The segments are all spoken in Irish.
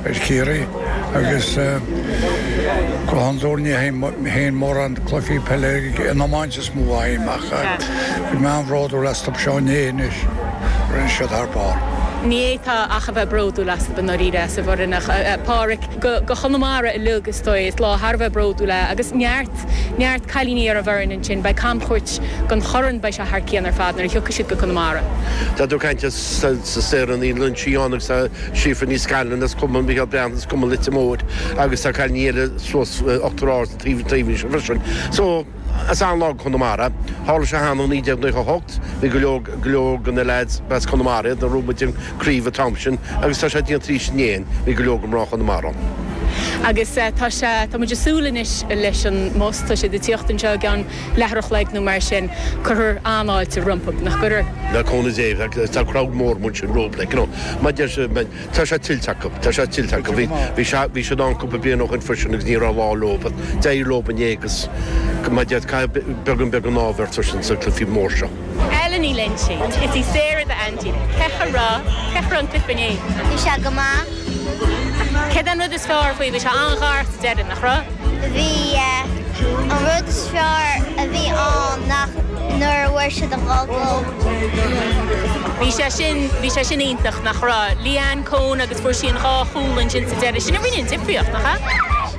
ar Chiarraí agus go hondúir ní théann mórán cluichí peile an iomáint is mó a théann amach ach bhí mé an-bhródúil astu inné anois rinne siad thar barr. Ní fhéadfá ach a bheith bródúil astu an oiread acu ar an bhfoireann ach Pádhraic do Chonamara uilig is dóigh is lá thar a bheith bródúil é agus neart neart cailíní ar an bhfoireann ansin beidh camchuairt den chorn beidh sé thar cionn ar fad nuair a thiocfaidh siad go Conamara. Tá tú ag caint ar Sarah Ní Loingsigh ann agus tá Síofra Ní Scanláin as Cumann Mhicheál Breathnach as Cumann Leitir Móir agus tá cailíní eile suas Uachtar Ard sa taobh taobhaí seo freisin. So is an-lá do Chonamara. Tharla sé cheana i 1998. Bhí go leor go leor de na leaids as Conamara nuair a bhuaigh muid an chraobh an t-am sin agus tá sé déanta arís inné. Bhí go leor de mhná Chonamara ann. Agus tá sé tá muid ag súil anois leis an mbus tá siad ag tíocht anseo ag an leathuair a chloig nó mar sin cuirfear an-fháilte rompu. Nach gcuirfear? le cúnamh Dé bheadh is tá crowd mór amuigh ansin rompu like you know mar deir siad man tá sé tuillte acu tá sé tuillte acu bhí bhí sé bhí siad ann cúpla bliain ó shin freisin agus ní raibh lá leo but d'éirigh leo inné agus mar deir caithfidh beagán beagán ádh a bheith ort sna cluichí móra seo. Ellen Ní Loingsigh, Is í Sarah d'aintín. Cén chaoi a raibh? Cén chaoi a raibh an cluiche inné? Bhí sé go maith. Céard é an rud is fearr faoi? Bhí sé an-ghar sa deireadh, nach raibh? Bhí. An rud is fearr a bhí ann ná nuair a fuair siad an goal. Bhí sé sin, bhí sé sin iontach, nach raibh? Leanne Coen agus fuair sí an dhá chúl ansin sa deireadh. Sin a rinne an difríocht, nach ea?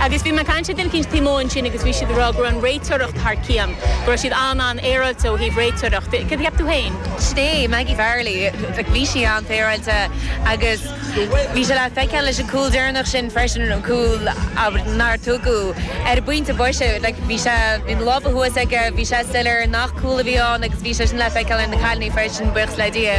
Agus bhí mé ag caint le duine eicínt taobh amuigh ansin agus bhí siad ag rá go raibh an réiteoireacht thar cionn, go raibh siad an-an-fhéaráilte ó thaobh réiteoireacht. Céard a cheap tú féin? Sin é, Maggie Farrelly, like bhí sí an-fhéaráilte agus bhí sé le feiceáil leis an gcúl deireanach sin freisin, an cúl nár tugadh ar an bpointe boise, like bhí sé, bhí na lámha thuas aige, bhí sé soiléir nach cúl a bhí ann agus bhí sé sin le feiceáil ar na cailíní freisin, buíochas le Dia.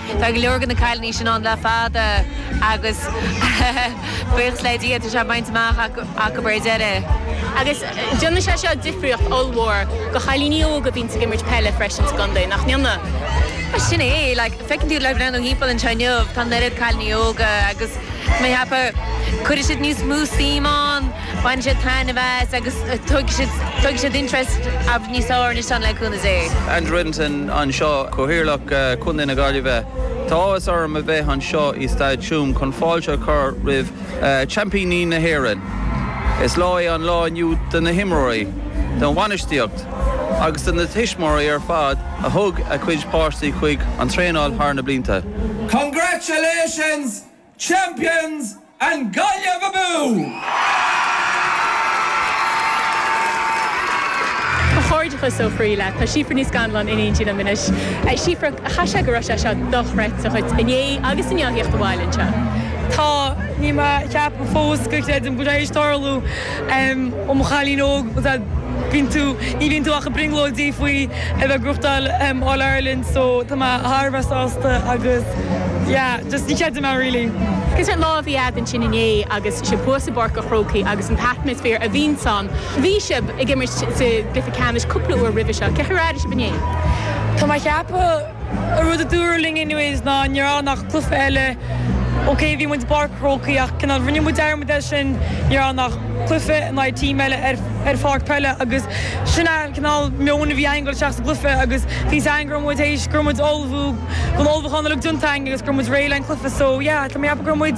Tá go leor de na cailíní sin ann le fada agus buíochas le Dia tá sé bainte amach acu ar deireadh. Agus déanann sé seo difríocht ollmhór do chailíní óga a bhíonns ag imirt peile freisin sa gcontae, nach ndéanann? Bhuel sin é, like, feiceann tú ag breathnú thimpeall anseo inniu tá an oiread cailíní óga agus, go mbeidh thapa, cuirfidh siad níos mó suim ann. Bainfidh siad taitneamh as agus tógfaidh siad interest níos fearr aríst ann le cúnamh Dé. Andrew Reddington anseo, Cathaoirleach Chontae na Gaillimhe. Tá áthas orm a bheith anseo i Staid Tuam chun fáilte a chur roimh Sheaimpíní na hÉireann. Is lá é an lá inniu do na himreoirí, don bhainistíocht agus do na tuismitheoirí ar fad a thug a gcuid páistí chuig an traenáil thar na blianta. Congratulations Champions and Gaillimh Abú! Comhghairdeachas ó chroí leo. Tá Síofra Ní Scanláin in éindí liom anois. Síofra, caithfidh sé go raibh sé seo dochreidte dhuit inné agus inniu theacht abhaile anseo. Tá, níl mé a cheapadh fós go gcreidim go raibh sé tar éis tarlú. Ó mo chailín óg, bíonn tú, ní bhíonn tú ach ag brionglóidí faoi a bheith ag buachtáil All Ireland so tá mé thar a bheith sásta agus yeah, just ní chreidim é really. Is an lá a bhí agat ansin inné agus sibh thuas i bPáirc an Chrócaigh agus an t-atmaisféar a bhíonns ann, bhí sibh ag imirt sa gcluiche ceannais cúpla uair roimhe seo, cén chaoi ar airigh sibh inné? Tá mé a cheapadh. An rud a dúradh linn inniu ná ní raibh ann ach cluiche eile OK bhí muid i bPáirc an Chrócaigh ach cineál rinne muid dearmad air sin, ní raibh ann ach cluiche in aghaidh team eile ar pháirc peile agus sin an cineál meoin a bhí againn ag goil isteach sa gcluiche agus bhí a fhios againn go raibh muid théis go raibh muid ullmhú go raibh an t-ullmhúchán uilig déanta againn agus go raibh muid réidh le haghaidh an cluiche so yeah tá mé a cheapadh go raibh muid